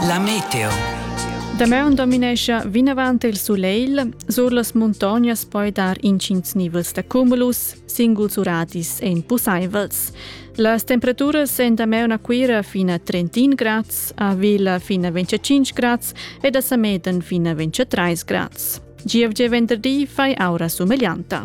La meteo. Damaun dominescha vinavant il sulegl, sur las muntognas poi dar intgins nivels da cumulus, singuls uradis èn pussaivels. Las temperaturas èn damaun a Cuira fin a 31 grads, a Vila fin a 25 grads ed a Sameden fin a 23 grads. GFG venderdi fai aura sumeglianta.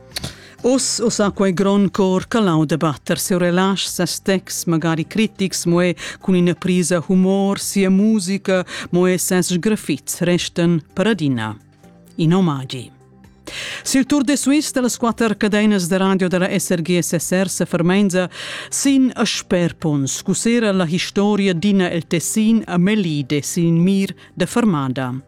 Uss ussa quei grond cor calau da batter seu relasch, ses texts, magari critics, mo è cun ina prisa humor, sia musica, mo è ses sgrafits restan per adina in omagi. Sil Tour de Suisse das quatter cadenas de radio della SRG SSR se fermenza sin a sperpons, cusera la historia d'ina el tessin a melide sin mir de fermada.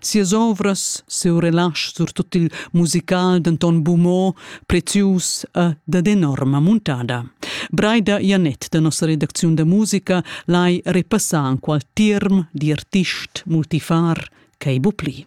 Sias ovras, siu relasch, surtut il musical denton bumo, prezius e dad enorma muntada. Breida Janet da nossa redacziun da musica lai repassar enqual tirm di artist multifar ch'ei bu pli.